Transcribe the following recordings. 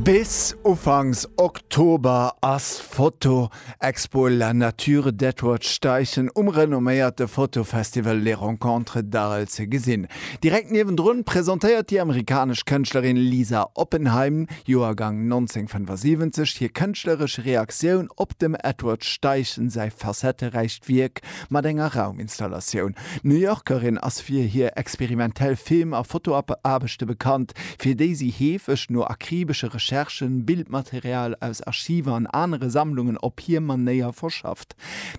Bis ufanks Oktober ass d'Foto Expo La Nature d'Edward-Steichen um renomméierte Fotofestival Les Rencontres d'Arles ze gesinn. Direkt niewendrun presentéiert déi amerikanesch Kënschtlerin Lisa Oppenheim, Joergang 1975, hir kënschtleresch Reaktioun op dem Edward Steichen säi facetteräicht Wierk Mat enger Rauminstallatioun. D'New Yorkerin ass fir hir experimentell Film a Fotoaarbechte bekannt, fir déi si heefeg no akribesche Recherchen Bildmaterial aus Archiver an anere Sammlungen op hir Manéier verschafft.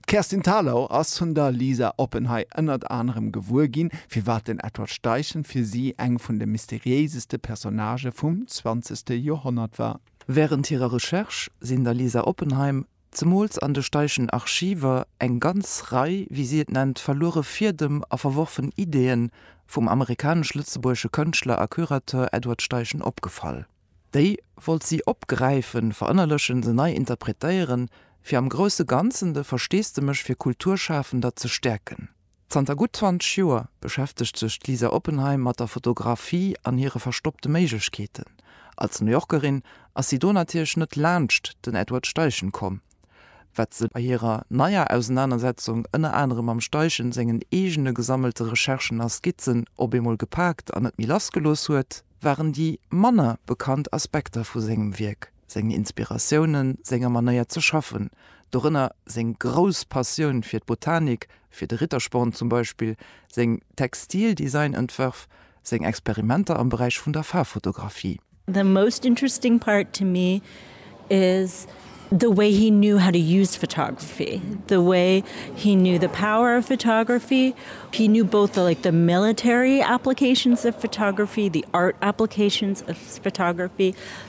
D'Kerstin Thalau ass vun der Lisa Oppenhey ënnert anerem gewuer ginn, firwat den Edward Steichen fir si eng vun de mysteriéiseste Personnagë vum zwanzegste Joerhonnert war. Wärend hirer Recherche sinn der Lisa Oppenheim zemools an de Steichen Archiver, eng ganz Rei, wéi si et nennt, verluere Fiedem a verworfen Ideeën vum amerikanesch-lëtzebuergesche Kënschtler a Curateur Edward Steichen opgefall. Déi wollt si opgräifen, verënnerlechen, se nei interpretéieren, fir am grousse Ganzen de Versteesdemech fir Kulturschafender ze stäerken. Zanter gutt 20 Joer beschäftegt sech d'Lisa Oppenheim mat der Fotografie an hire verstoppte Méiglechkeeten. Als New Yorkerin ass si do natierlech net laanscht den Edward Steichen komm. Wat se bei hirer neier Ausenanersetzung ënner anerem mam Steichen sengen eegene gesammelte Recherchen a Skizzen op eemol gepaakt an net méi lassgelooss huet, waren déi manner bekannt Aspekter vu sengem Wierk. seng Inspiratiounen, senger Manéier ze schaffen, dorënner seng grouss Passioun fir d'Botanik, fir de Rittersporn zum Beispill, seng Textildesign-Entwërf, seng Experimenter am Beräich vun der Faarffotografie. The most interesting part to me is the way he knew how to use photography, the way he knew the power of photography, he knew both the like the military applications of photography, the art applications of photography,